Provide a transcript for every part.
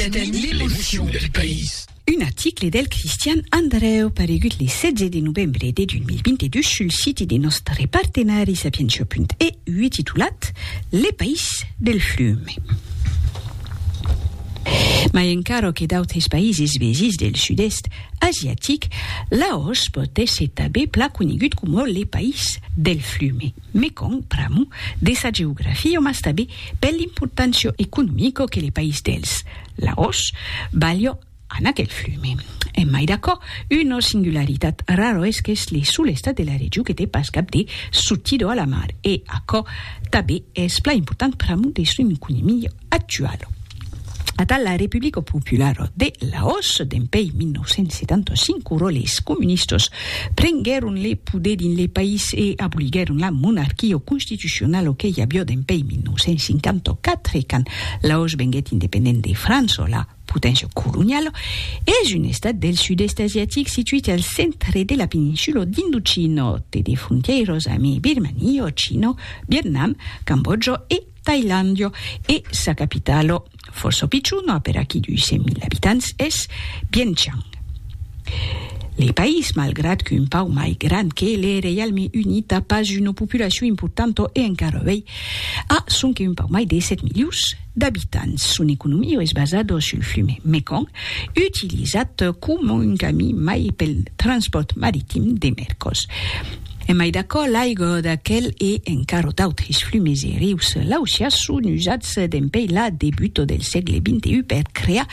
Detenir l'emocion del país. Un article del Cristian Andreu paregut le 16 de novembre de 2022 sul siti de nòstre partenari Sapientia.eu titulat Le país del fume. Mai encara que d'autres païses vesins del sud-èst asiatic, Laos pòt èsser tanben plan conegut coma le país del fume. Mekong, pr'amor de sa geografia mas tanben per l'importància economica que le país dels Laos balha an aquel flume. En mai d'aquò, una singularitat rara es qu'es le sol estat de la region que te pas cap de sortida a la mar e aquò tanben es plan important pr'amor de son economia. actual. Atal la Republico Popularo de Laos, dempèi 1975, ora les comunistos prenguèron le poder dins le país e aboliguèron la monarquio constitucionalo que i avió dempèi 1954, quand Laos venguèt independent de França, la poténcia coloniala, es un estat del sud-èst asiatic situit al centre de la peninsula d'Indochina, té de frontièiras ame Birmania, China, Vietnam, Cambòtja e Tailandio e sa capitalo, fòrça pichona per aquí 200.000 abitants, es Viêng Chang. Le país, malgrat qu'un pauc mai grand que le Reialme Unit, a pas una populacion importanta e encara avei a sonque un pauc mai de 7 milions d'abitants. Son economia es basada sul flum Mekong, utilizat coma un camin mai pel transpòrt maritim de mercos. E mai d'aquò, l'aigo d'aquel e encara d'autres flumes e rius lausià son usats dempèi la debuto del sègle XXI per crear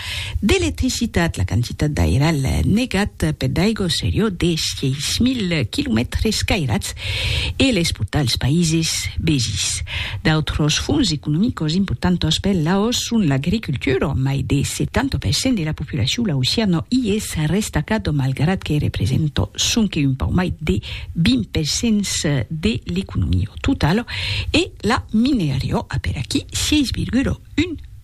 d'electricitat. La quantitat d'airàl negat peth d'aigo serió de 6.000 quilomètres cairats e les portà als païses vesins. D'autres fonts economicos importantos per Laos son l'agricultura, mai de 70% de la Puis la chula aucia no i es restacado malgrat que represento sonque un pauc mai de 20 per cents de l'economio totalo e la minerio a per aquí 6,1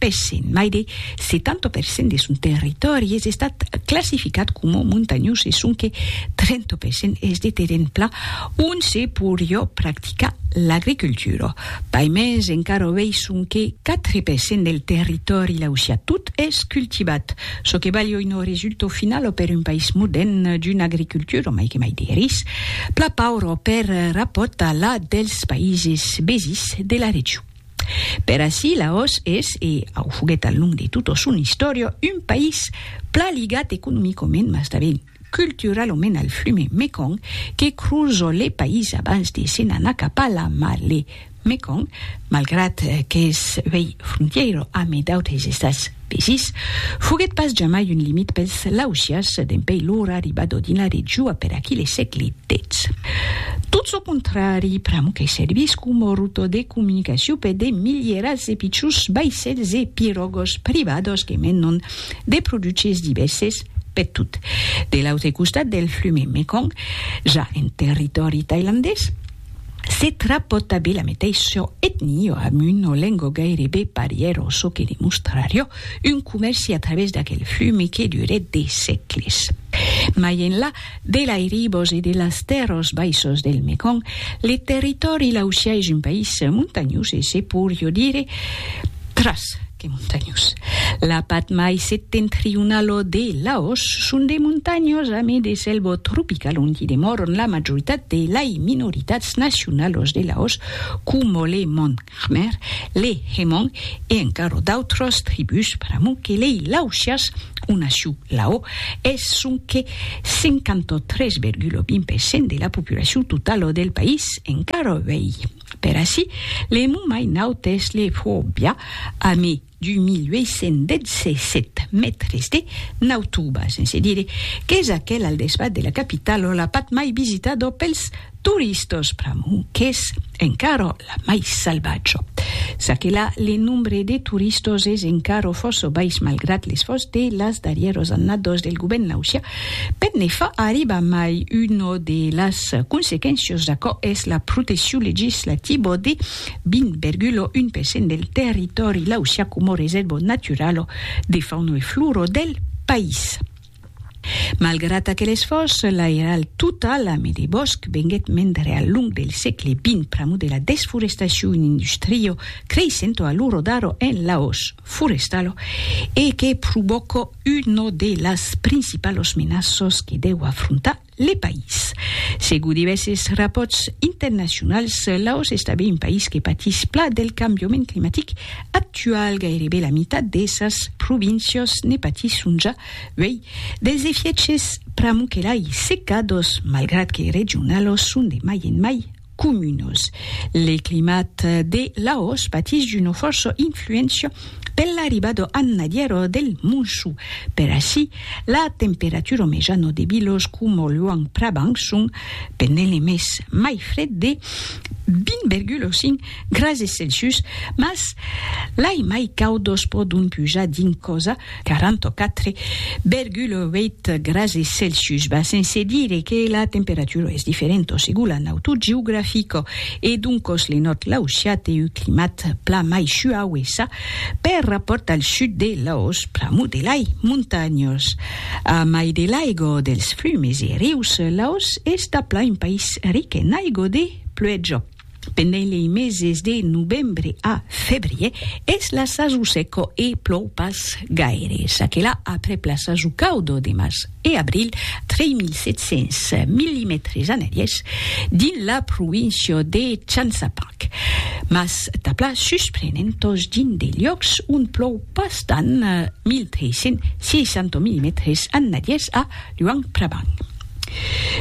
per cent. Mai de 70 per cent de son territòri es estat classificat coma montanhós e sonque 30 per cent es de terren plan ont se porió practicar l'agricultura. Pas mens encara o vei sonque 4 per cent del territòri lausià. Tot es cultivat, çò que balh oi no resulta au final o per un país modèrn d'una agricultura mai que mai de ris, pla paura o per rapòrt a la dels paises vesins de la region. Per ací, Laos es, e au foguèt al long de tota son istòria, un país pla ligat economicament mas tanben. cultura lo mena al flume Mekong que cruzo le país abans de se n'anar cap a la mar le Mekong malgrat qu'es uei frontièira ame d'autres estats vesins foguèt pas jamai un limit pels Laosias dempei lor arribada dins la regiua per aquí le sègle xix tot çò contrari pr'amor que servís coma ruta de comunicacion per de milierats de pichons vaissèls e pirògas privadas que menon de produches divèrses peth tot. De l'autre costat del flume Mekong, ja en territòri tailandés, se trapòta be la meteisho etnio amb un olengo gairebe parièro, çò que demostrarió un comèrci a través d'aquel flume que durèt de sègles. Mai enlà, De l'airibos e de las tèrros baissos del Mekong, le territòri laossià es un país montanhós e se poirió dire tras que montanhós. La pat mai septentrionalo de Laos son de montanhos ame de selvo tropical onti demòron la majoritat de lai minoritats nacionalos de Laos, coma le Mon Khmer, lei Hemong e encaro d'autras tribús pr'amor que lei Laotias, o nacion Lao, es sonque 53,20% de la populacion totala del país, encara uèi. Per aicí, le mot mai naut es le Pho Bia, a me 2.817 mètres de nautuba, sense dire qu'es aquel al desbat de la capitalo la path mai visitado pels turistos pr'amor qu'es encara la mai salvatjo. Çaquelà le nombre de turistos es encara fòrça bais malgrat l'esfòrç de las darrièros annados del govèrn lausià per ne far arribar mai. Una de las consequéncias d'aquò es la proteccion legislativa de 20,1 per cent del territòri lausià coma resèrva naturala de fauna e flora del país. Malgrat aquel esfòrç, l'airal total a Medi Bòsc venguèt mendre al long del sègle xx pr'amor de la desforestacion una industria creissenta a l'ora d'ara en l'auç forestal e que provòca una de las principalas menaças que deu afrontar Le País. Segur divèses rapòrts internacionals, Laos estabe un país que patís pla del cambiament climatic actual. Gairebe la mitat de sas províncias ne patisson ja uèi dels efièches pr'amor que lai secados, malgrat que regionalos son de mai en mai comunos. Le climat de Laos patís d'una fòrça influéncia per l'arribada annadièra del monsó. Per aicí, la temperatura mejana de vilas coma Luang Prabang son pendent le mes mai fred de 20,5 grases Celsius, mas lai mai caudas pòdon pujar dins cosa 44,8 grasses Celsius va sense dire que la temperatura es diferenta segur la nautor geografica e doncos le nòrd laossià te u climat plan mai suau e ça per rapòrt al sud de Laos pr'amor de lai montanhas a mai de l'aiga dels flumes e rius Laos es daplan un país ric en aiga de pluèja. Pendent lei meses de novembre a febrier, es la sason seca e plòu pas gaire. Çaquelà, aprèp la sason cauda de març e abril, 3.700 millimètres analièrs dins la província de Chansapang. Mas tabla susprenentas dins de liòcs ont plòu pas tant, 1.360 millimètres analièrs a Luang Prabang.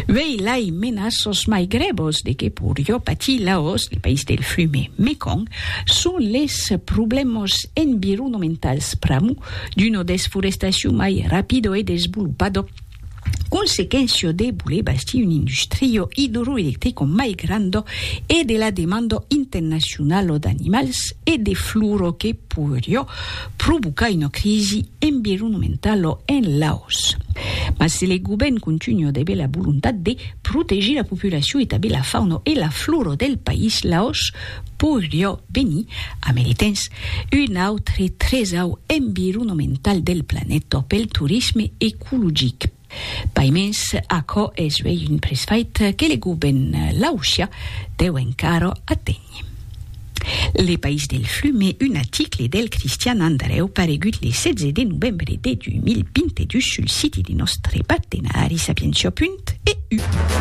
Uèi lai menas sos mai grèvos de que pur jo patir Laos, le país del flume Mekong, son les problèmos environomentals pr'amor d'una desforestacion mai rapida e desvolopada, consequéncia de voler bastir un industria idroelectrica mai granda e de la demanda internacionala d'animals e de flora que pur jo provocar una crisi environomentala en Laos. Mas se le govèrn contunha de bela volontat de protegir la populacion e tanben la fauna e la flora del país, Laos podriá venir, a mai de temps, un autre tresau environomental del planeta pel torisme ecologic. Pas mens, aquò es uèi un presfait que le govn laossià deu encara aténher. Le País del Flume, un aticle del Cristian Andrèu paregut le 16 de novembre de 2022 sul siti de nòstre partenari Sapientia. Eu.